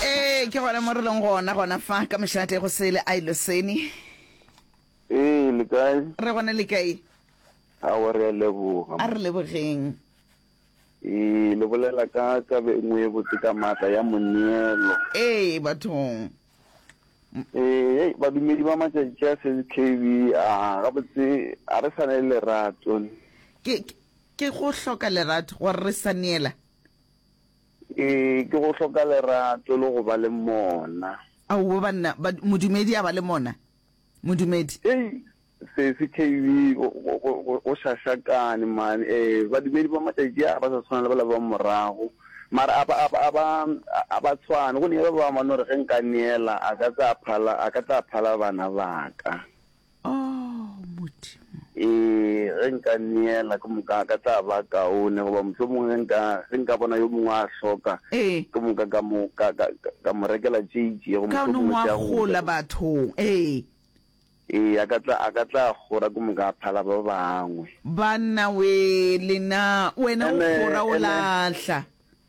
ee ke gona mo re leng gona gona fa ka mešate go sele a ilo seni ee le kae re gone le kae a wa re a leboga a re lebogeng ee le bolela ka taba e nngwe e botse ka maatla ya moneelo ee bathong ee badumedi ba matšatši a sel k b a gabotse a re sane le lerato ke ke- ke go hloka lerato gore re sa neela Ee, ke go hloka lerato le go ba le mona. Aowa banna, ba, modumedi a ba le mona. Modumedi. Hei, Sesi KB, go, go, go, go, go šašakane, man. Ee, badumedi ba matšatši a ba sa tshwana le bala ba morago. Mara a ba, a ba, a ba, a ba tshwane. Go ne ba bangwe ba no re, Ge nka neela, a ka tla a phala, a ka tla a phala bana ba ka. oh modimo e ge nka neela ke moka ka tla ba kaone goba motlho mongwe ge nka ge nka bona yo mongwe a hloka ee ke moka ka mo ka ka ka- ka mo rekela tšeitši go ka motlho no mongwe wa tša go gola bathong ee ee a ka tla a ka tla gora ke moka a phala ba bangwe banna we lena wena o Ene- gora o ene- lahla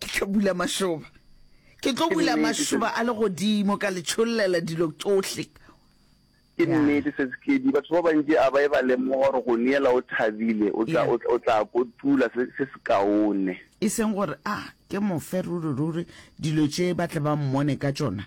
Ke tlo bula mašoba. Ke tlo bula mašoba a legodimo ka le tšhollela dilo tšohle. Ke nnete, Sesekedi. Batho ba bantši a ba e ba lemoga gore go neela o thabile o tla, o, o tla kotula se, se sekaone. E seng gore a ke mo fe ruri-ruri dilo tše ba tle ba mmone ka tšona.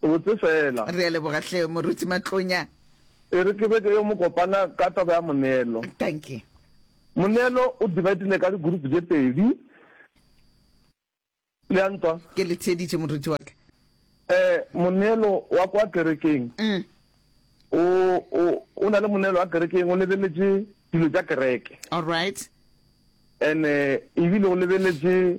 O botse fela. Re a leboga hle, Moruti Matlonya. E re ke be ke yo mo kopana ka taba ya moneelo. Dankie. Moneelo o dividile ka di-group tše pedi. Le a ntwa? Ke le theeditše, moruti wa ka. Eh, moneelo wa kwa kerekeng. Mm. O, o, o na le moneelo wa kerekeng, o lebeletše dilo tša kereke. All right. And-e, ebile o lebeletše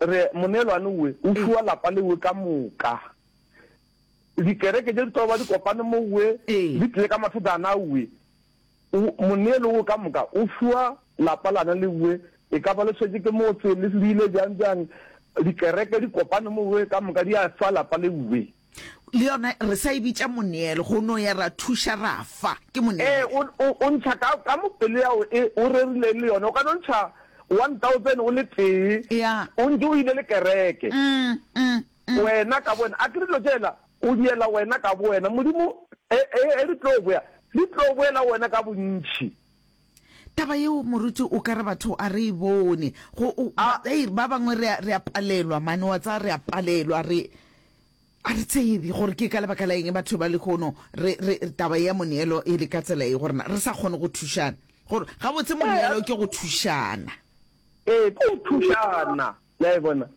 Re, moneelwane we, o fiwa lapa le we ka moka. Dikereke tše di tlo ba di kopane mo we, di tlile ka mathata ana we. O, moneelo wo ka moka, o fiwa lapa lana le we, e ka ba le swetše ke motse, le le ile bjang bjang, dikereke di kopane mo we ka moka, di a fa lapa le we. le yona re sa e bitša moneelo go no ya ra thuša ra fa ke ee moneelo o o o ntšha ka ka mo pelo ya o e o rerileng le yone o ka no ntšha 1000 o le tee ya o ntše o ile le kereke mm, mm, mm. wena ka bowena a ke dilo tšela o diela wena ka bowena modimo e e e di tlo boya di tlo boela wena ka bontšhi Taba yeo moruti o ka re batho a re e bone go ba, hey, ba bangwe re a, re a palelwa mane wa tsa re a palelwa re a re tsebe gore ke ka lebaka la eng batho ba lehono re, re taba ya moneelo e le ka tsela e gorena re sa kgone go thušana gore gabotse moneelo ke go thušana ee ke go thušana Le a e bona?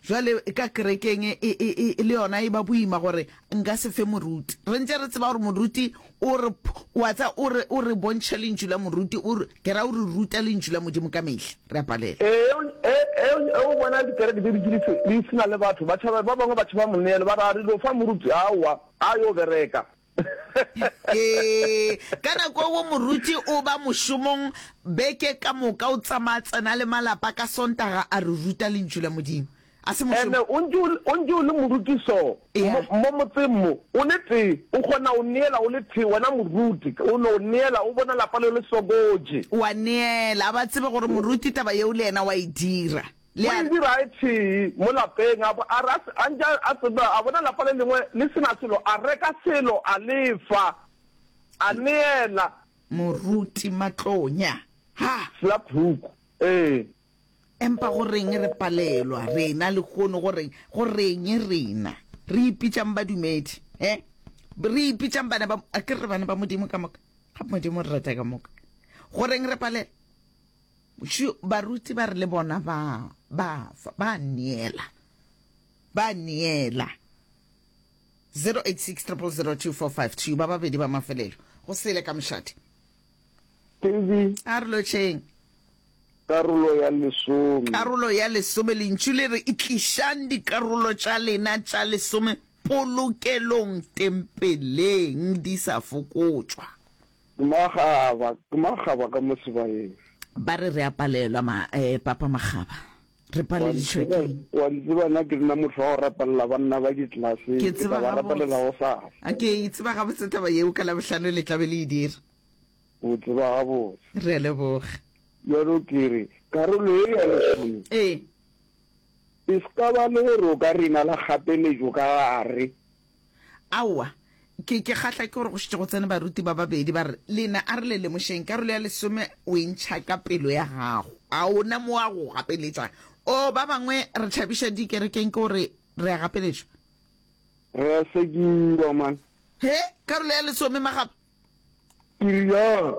Bjale, ka kerekeng e, e, e, e le yona e ba boima gore nka se fe moruti. Re ntše re tseba gore moruti o re, o a tseba, o re, o re bontšha Lentšu la moruti, o re, ke ra o re ruta Lentšu la Modimo ka mehla. Re a palela. Ee, o, e, e, e, o bona dikereke di dutše di se, di se na le batho. Ba tšhaba, ba bangwe ba tšhaba moneelo, ba re, a re lo fa moruti, aowa, a yo bereka. Ee, ka nako eo moruti o ba mošomong beke ka moka, o tsamaya tsena le malapa ka Sontaga a re ruta Lentšu la Modimo. A se mošomo. Ene o ntše o le- o ntše o le moruti so, Yeah. mo mo motseng mo, o le tee, o kgona o neela o le tee, wena moruti, o no neela, o bona lapa leo le sokoje. Wa neela, a ba tsebe gore moruti taba yeo le yena wa e dira. Le a. Moibi ra e thee mo lapeng, a bo a re a se, a ntše a, a tseba, a bona lapa le lengwe le se na selo, a reka selo, a lefa, a neela. Moruti Matlonya. Ha. Slap hook. Ee. Empa go reng re palelwa, rena, lehono? Go reng? Go reng rena? Re ipitšang badumedi, he? Re ipitšang bana ba, a ke re bana ba Modimo ka moka? Gape Modimo o re rata ka moka. Go reng re palelwa? Šo, baruti ba re le bona ba, ba fa, ba neela. Ba neela. 086 0002452 ba babedi ba mafelelo go sele ka mošate Tezi. a re lotšheng karolo ya lesome karolo ya lesome lentšu le re itlišang dikarolo tša lena tša lesome polokelong tempeleng di sa fokotšwa Ke makgaba, ke makgaba ka mo sebayeng. Ba re re a palelwa ma, eh, Papa Makgaba. Re paleditšwe ke. Wa di tseba na ke nna motho wa go rapelela banna ba ditlelase, ke tla ba rapelela go sa. Ke e tseba gabotse taba yeo, ka Labohlano le tla be le e dira. O tseba gabotse. Re a leboga. Bjalo ke re, karolo ye ya lesome. Ee. E se ka ba le gore o ka re na le kgapeletšo ka gare, Aowa, ke, ke kgahla ke gore go šetše go tsene baruti ba babedi, ba re, Lena, a re le lemošeng, karolo ya lesome o e ntšha ka pelo ya gago. A o na mo a go gapeletša? Oo, ba bangwe re thabiša dikerekeng ke gore re a gapeletšwa. Re a sekiwa, man. He, karolo ya lesome, magapu! Period.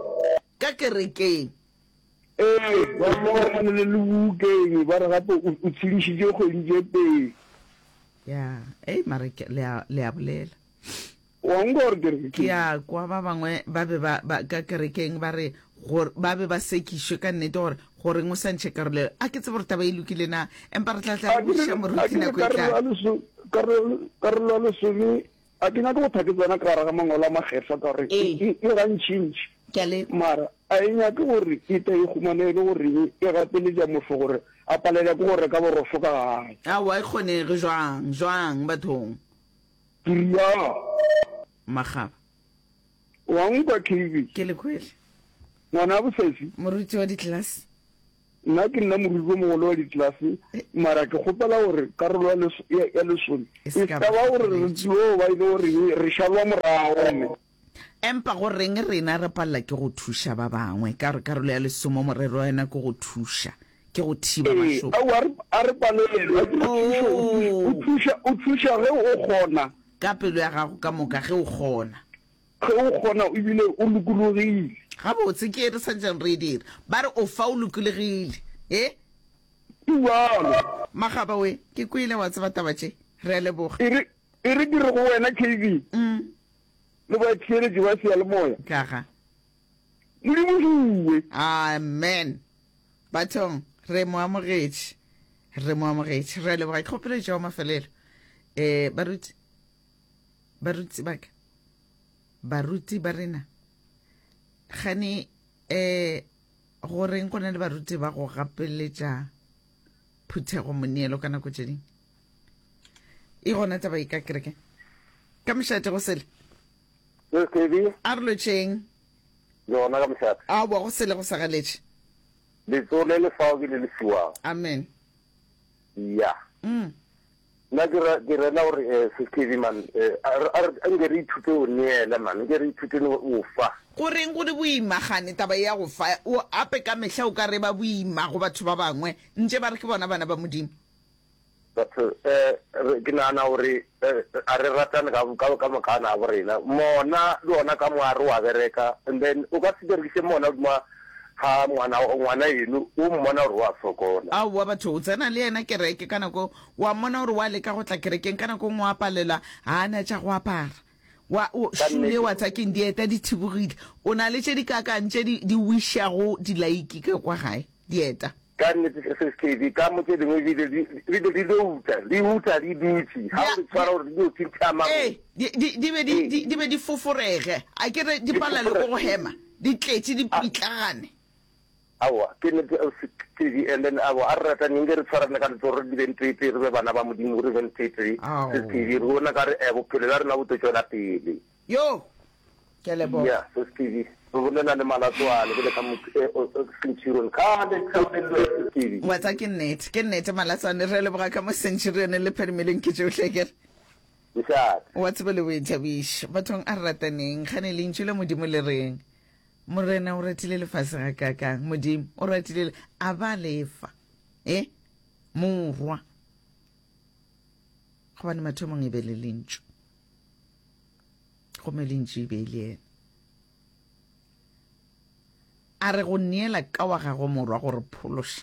Ka kerekeng. Ee, ba rile ba tshwanele le bukeng, ba re gape o tshedišitše kgwedi tše pedi. Ya, ei mara le a, le a bolela. Wa nkwa gore ke re Ke a kwa ba bangwe ba be ba, ba ka kerekeng ba re gore ba be ba sekišwe ka nnete gore goreng o sa ntšhe karolo eo. A ke tsebe gore taba e lokile na, empa re tla tla re botšiša moruti nako e tlang. Karolo ya lesome A ke nyake go thwa ke tsena ka gare ga Mangwalo a Makgethwa ka gore e gantšintši, mara a e nyake gore e tle e humane e le goreng e gapeletša motho gore a palelwe ke go reka borosho ka gae. Aowa, e kgonege. Bjang? Bjang bathong? Tiriaa! Makgaba. O a nkwa, Kheibitši? Ke le kwele. Ngwana a Bosesi? Moruti wa ditlelase. Nna ke nna moriri o mogolo wa ditlelase, mara ke kgopela gore karolo ya les, ya, ya lesole E e se ka ska ba ba gore re hlokoletše. tlo ba e le goreng re šalwa morago gomme Empa go reng rena re palela ke go thuša ba bangwe? Ka gore karolo ya lesome morero wa yona ke go thuša, ke go thiba Ee, mašoba. aowa, a re, a re palelwe ke go thuša. O thu-, o Oo! thuša, o thuša ge o kgona. Ka pelo ya gago ka moka, ge o kgona. Ge o kgona o bile o lokologile. Gabotse ke ere Sergeant Reeder? Ba re o fa o lokolegile, ee? Ke bjalo. Magaba we, ke kwele, wa tseba taba tše. Re a leboga. E re, e re ke re go wena, Kevin, le batheeletši ba seyalemoya, Ka ga. le lebogiwe. Amen. Bathong, re mo amogetše. Re mo amogetše. Re a leboga. Ke kgopelo e tšwago mafelelo, ee, baruti? Baruti ba ka, baruti ba rena, gane eh, go reng go na le baruti ba go gapeletša phuthego moneelo ka nako tše ding e gona taba e ka kereke ka mošate go sele a re lotšheng yona ka mošate a boa go sele go sa galetše letsole le fao ke le le fiwang amen ya yeah. mm. Nna ke ra ke rela gore eh Seskebi man eh a re a re nke re ithute o neela man nke re ithute no o fa. Go reng go le boima gane taba ea go fa? O ape ka mehla o ka re ba boima go batho ba bangwe ntše ba re ke bona bana ba Modimo. Batho eh re ke nagana gore eh a re ratane ka ka ka moka a na bo rena mona le ona ka moya re wa bereka and then o ka se berekise mona ma ga ngwana, ngwana eno o mmona gore o a sokola. Aowa, batho, o tsena le yena kereke ka nako, o a mmona gore o a leka go tla kerekeng, ka nako nngwe o a palelwa, ga a na tša go apara, wa, o, shoe yeo tsa keng, dieta di thibogile, o na le tše dikaakang tše di, di wišago dilaiki ka kwa gae, dieta. Ka nnete, se se seke dikamo tše dingwe di be di be di dio uta, di uta di dutše, ga o di tshwara gore di dio phintha mago. Ee, di, di, di be di, di, di be di foforege, a ke re di palelwe ke go hema, di tletše, di pitlagane. Aowa, ke nnete, Ausi Stevie. And then, aowa, a re rataneng, nke re tshwarane ka letsogo, re di beng tee-tee, re be bana ba Modimo, re beng tee-tee, Sesi Stevie, re bone ka re, eh, bophelo bja rena bo tlo tšwela pele. Yo! Ke a leboga. Yeah, Sis Kibi. Re bolela le Malatsoane, ke le ka motho e o Centurion. Kgale ke sa bolelelwa Sis Kibi. Ngwatsa ke nnete, ke nnete Malatsoane. Re a leboga ka mo Centurion le Phedimelong ke tšohle ke re. Nxaat. Wa tseba le Boithabiši. Bathong a re rataneng. Kgane Lentšu la Modimo le reng? Morena o ratile lefase gakaakang? Modimo o ratile le, a ba le fa. E? Morwa. Gobane mathomong e be le Lentšu. gomme le ntši be le yena a re go neela ka wa gago morwa go re phološa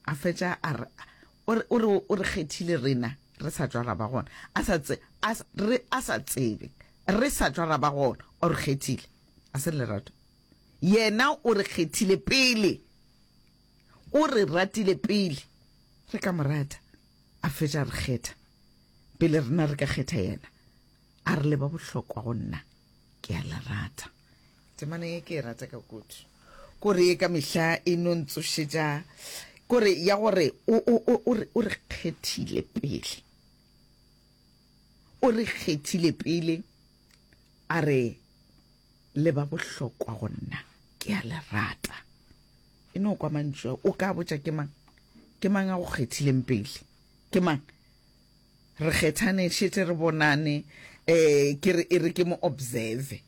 a fetša a re o re o re kgethile rena re sa tšwala ba gona a sa tse a re a sa tsebe re sa tšwala ba gona o re kgethile a se lerato yena o re kgethile pele o re ratile pele re ka morata A fetša a re kgetha, pele rena re ka kgetha yena. A re le ba bohlokwa go nna, ke a le rata. Temana ye ke e rata ka kudu. Kore ye ka mehla e no ntsošetša, kore ya gore o, o, o, o re, o re kgethile pele. O re kgethile pele, a re le ba bohlokwa go nna, ke a le rata. E no kwa mantšu a o ka botša ke mang? Ke mang a go kgethileng pele? Ke mang? Re kgethane šete re bonane um ke re e re ke mo observe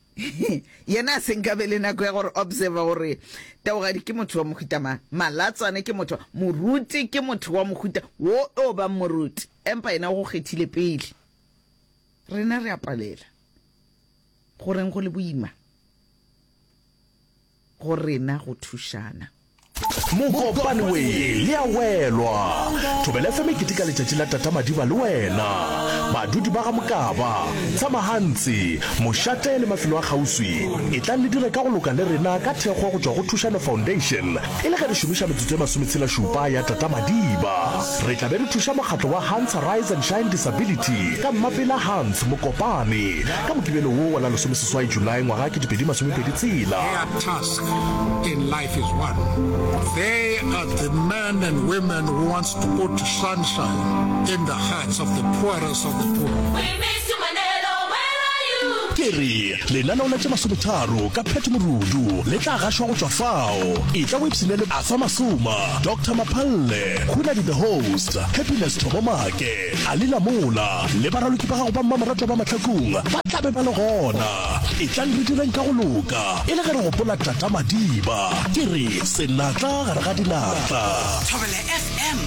yena a se nka be le nako ya gore observer gore taogadi ke motho wa mohuta mang malatswane ke motho moruti ke motho wa mohuta wo o bang moruti empa yena o go kgethile pele rena re a palela go reng go le boima go rena go thušana. Mokopane we le a welwa. Thobela FM e keteka letšatši la Tata Madiba le wena. Badudi ba ga Mokaba, Tshamahantsi, Mošate le mafelo a kgauswi, etlang le dire ka go loka le rena ka thekgo go tšwa go Thušano Foundation e le ge re šomiša metsotso e masometshelašupa ya Tata Madiba. Re tla be re thuša mokgatlo wa Hans Rise and Shine Disability ka Mmapela Hans Mokopane Ka Mokibelo wo wa la lesomeseswai July ngwaga ke dipedi masomepedi tshela. Their task in life is one, they are the men and women who wants to put sunshine in the hearts of the poorest of the poor. We miss you Manelo, where are you? Ke re, lenaneo la tše masometharo ka Pat Morudu le tla gašwa go tšwa fao. Etla o ipshine le Arthur Masoma, Doctor Maphalle, Khunadi the Host, Happiness Thobomake, A le la mola, le baraloki ba gago ba mmamoratwa ba mahlakong ba tla be ba le gona. Etlang re direng ka go loka, e le ge re gopola Tata Madiba. Ke re, Senatla gare ga dinatla. Thobela FM,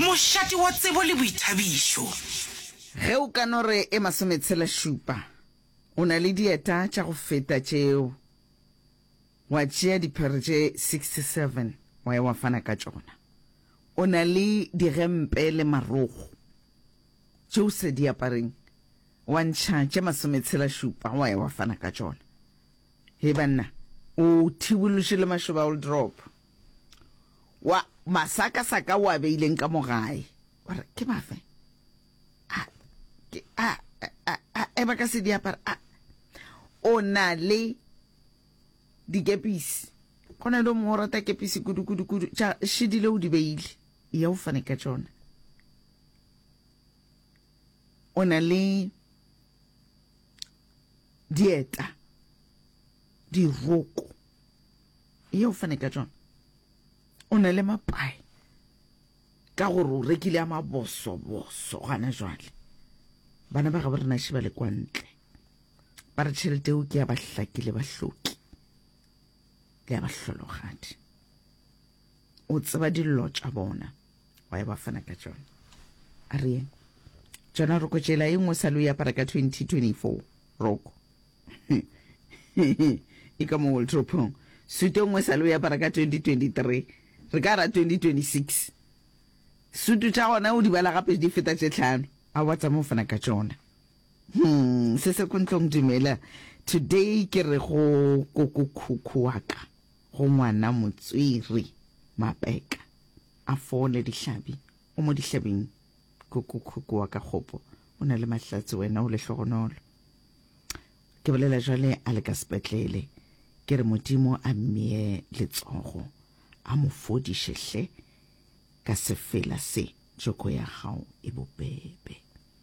mošate wa tsebo le boithabišo. Ge o ka no re e masometshela-šupa, o na le dieta tša go feta tšeo. Wa tšea diphere tše 67 wa ya wa fana ka tšona. O na le digempe le marogo tše o sa di apareng, wa ntšha tše masometshelašupa wa ya wa fana ka tšona. Hei banna, o thibološe le mašoba a woldropo wa masakasaka o a beileng ka mo gae. Wa re, Ke mafe a ke a a a a ba ka se di apara? A o na le dikepisi go na le o mongwe o rata kepisi kudu-kudu-kudu tša šedile o di beile ya o fane ka tšona o na le dieta diroko ya o fane ka tšona o na le mapae ka gore o rekile a maboso-boso gana jwale bana ba ga bo rena šeba le kwa ntle ba re tšhelete eo ke ya bahlaki le bahloki le ya bahlologadi o tseba dillo tša bona wa e ba fana ka tšona a re yeng tšona roko tšela e nngwe sa lo yapara ka 2024 roko e ka mo waldropong suto nngwe sa lo yapara ka 2023 re ka ra 2026 sutu tša gona o di bala gape di feta tše tlhano a wa tsamao fana ka tšona Hum, Sesekontlong dumela. Today ke re go kokokhukhu wa ka, go ngwana Motswiri Mapeka, a fole dihlabi. O mo dihlabing kokokhukhu wa ka Kgopo, o na le mahlatse wena o lehlogonolo. Ke bolela jwale a le ka sepetlele, ke re Modimo a mmee letsogo, a mo fodiše hle ka sefela se tšoko ya gago e bobebe.